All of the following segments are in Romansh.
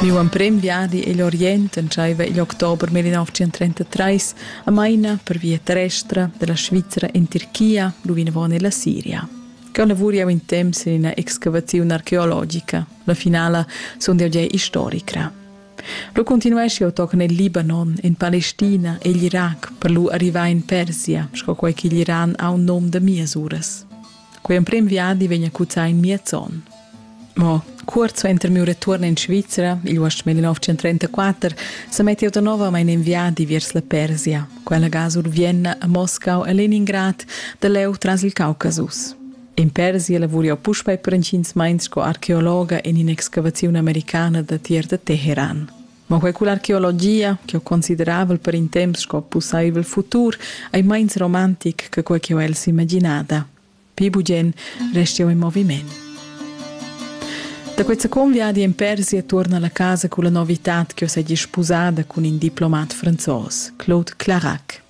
Miu emprem viadi igl Orient entscheiva igl october millennotschentrentatrés a Maina per via terrestra dalla Svizra en Tirchia lu vinavon ella Siria. Cheu lavur jeu in temps en ina excavaziun archeologica. La finala sundel jeu historicra. Lu continuesch jeu tochen el Libanon, en Palestina e igl Irac per lu arrivar en Persia, sco quei ch'igl Iran ha un num da mias uras. Quei emprem viadi vegn a cuzzar in miez onn. Mo Cuort suenter miu retuorn in Svizra, igl uost 1934, sa mettiu da novamein in viadi viers la Persia, quella ga sur Vienna, a Moscau e Leningrad, da leu tras il Caucasus. In Persia lavuriu puspei per entgins meins sco archeologa en in'excavaziun americana da tier da Teheran. Ma quei cull'archeologia, che ho consideravel per in temps sco pussaivel futur, ei meins romantic che quei che ho el s'imaginada. Pli bugen resti eu in moviment. Da quei second viadi in Persia tuorna alla casa culla novità che ho segi sposada cun in diplomat franzos, Claude Clarac.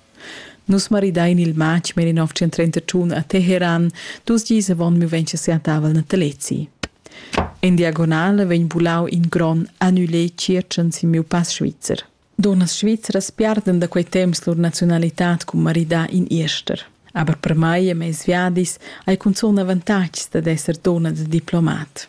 Nus maridein il matg mer in 1931 a Teheran, dus gis avon mi vegn siatavel natalezi. In diagonale vegn bulau in gron annulé circen sin miu pass svizzer. Dunnas svizzeras piarden da quei temps lur nazionalitad cun maridar in Irster. Aber per mai e mes viadis hai cunzun avantatgs dad esser dunna da diplomat.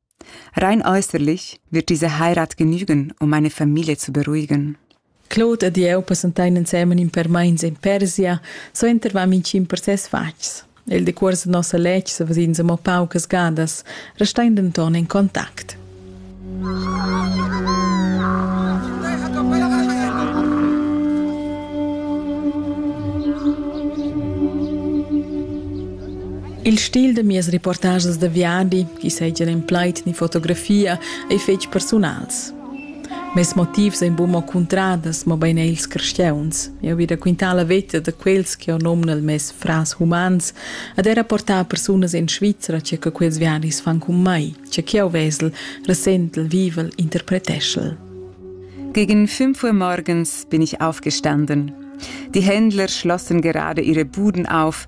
Rein äußerlich wird diese Heirat genügen, um meine Familie zu beruhigen. Claude ed jeu passentein ensemen in per meins in Persia, suenter vam in cin per ses fatgs. Il decuors de nossa letg se vesins amo paucas gadas, restein denton in contact. Il stil da mias reportages da viadi, chi seigien en plaid ni fotografia, ei fetg persunals. Mes motivs ein buca cuntradas, mobein ei ils crescheuns. Eu vi raquintar la veta da quels che ho nom nel mes fras humans ad era portar persunas in Svizzera che che quels viadis fan con mai, che che eu vesel, ressentel, vivel, interpreteschel. Gegen fünf Uhr morgens bin ich aufgestanden. Die Händler schlossen gerade ihre Buden auf,